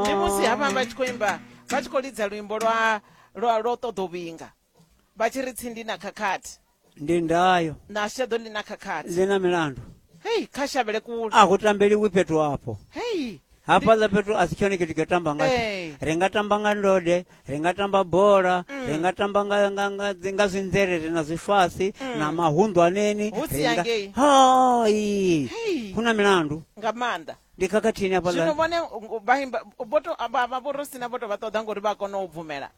ndi musi havha vha tshi khou imba vha tshi khou lidza luimbo lwa lwa lwa u ṱoḓa u vhinga vha tshi ri tsindi na khakhathi ndi ndayo na shaḓo ḽi na khakhathi ḽi na milandu hei kha shavhele kule a hu tambeliwi fhethu hafho hei hafhaḽa fhethu a si tshone tshithu tsho tamba ngatsho Ee. ri nga tamba nga ndode ri nga tamba bola Mm. ri nga tamba nga- nga- nga dzi- nga zwinzerere na zwifasi na mahunḓwaneni Mm. Hu si ri nga- yangei. hai Hei. hu na milandu nga maanḓa ndi khakhathini hafha zwino vhone vhaporosina vho to vha ṱoḓa ngori vha kona u bvumela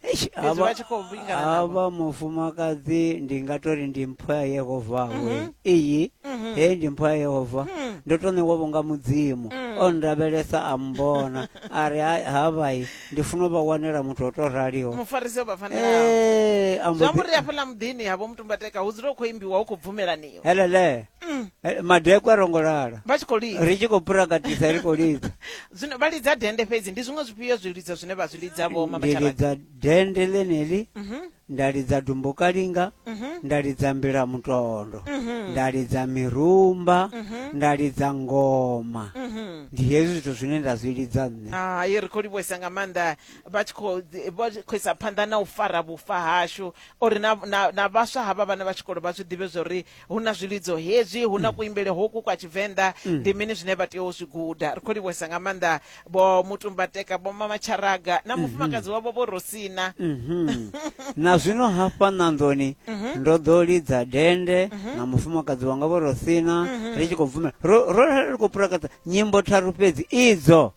vha tshi khou vhingaavha mufumakadzi ndi nga tori ndi mpho ya yehova we mhm. iyi mhm. he ndi mpho ya yehova mhm. ndo to ṋewa vhonga mudzimu mm. o ndavhelesa a mbona a ri havhai ndi funa u vha wanela muthu o to raliho mufarisi vha fanelaambo ri afhaḽa muḓini havho mutumbateka hu dzula u khou imbiwa u khou bvumelaniwa helele Mm. Eh, madekwe a rongo lala vha tshi khou lidza ri tshi khou phuragatisa ri khou lidza zwino vha lidza dende fhedzi ndi zwiṅwe zwifhio zwilidzo zwine vha zwi lidza vho mama ndi Tshabane? lidza dende ḽeneli Mhm, nda lidza dumbokalinga mhm, nda lidza mbila mutondo mhm, nda lidza mirumba mhm, nda lidza ngoma mhm. ndi hezwi zwithu zwine nda zwi lidza nṋe hai ri khou livhuwesa nga maanḓa vha tshi khou ḓi- vha tshi khou isa phanḓa na u fara vhufa hashu uri na- na na vhaswa havha vhana vha tshikolo vha zwi ḓivhe zwa uri hu na zwilidzo hezwi hu na kuimbele hoku kwa tshivenḓa ndi mini zwine vha tea u zwi guda ri khou livhuwesa nga maanḓa vho mutumbateka vho mama tsharaga na mufumakadzi wavho vho rosina Mhm. na zwino hafha ṋanḓoni ndo ḓo lidza dende na mufumakadzi wanga vho rosina ri tshi khou bvumela ro ro ri khou purakadza nyimbo tharu fhedzi idzo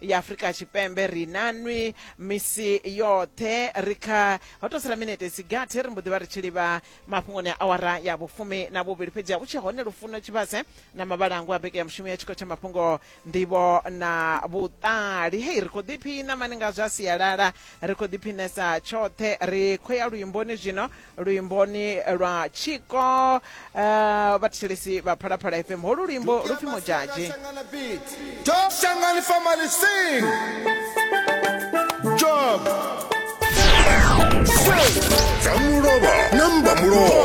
ya afurika tshipembe ri na nwi misi yoṱhe ri kha ho to sala minete sigathi ri mbo ḓi vha ri tshi livha mafhungoni a awara ya vhufumi na vhuvhili fhedzi ha vhu tshe hone lufuno tshivhase na mavhalangu a beke ya mushumo ya tshikho tsha mafhungo nḓivho na vhuṱali hei ri khou ḓiphina mani nga zwa sialala ri khou ḓiphinesa tshoṱhe ri khou ya luimboni zwino luimboni lwa tshiko uh, vhathetshelesi vha phalaphala fm holu luimbo lu pfi modzhadzhe job Say, Damulova, number Mulova.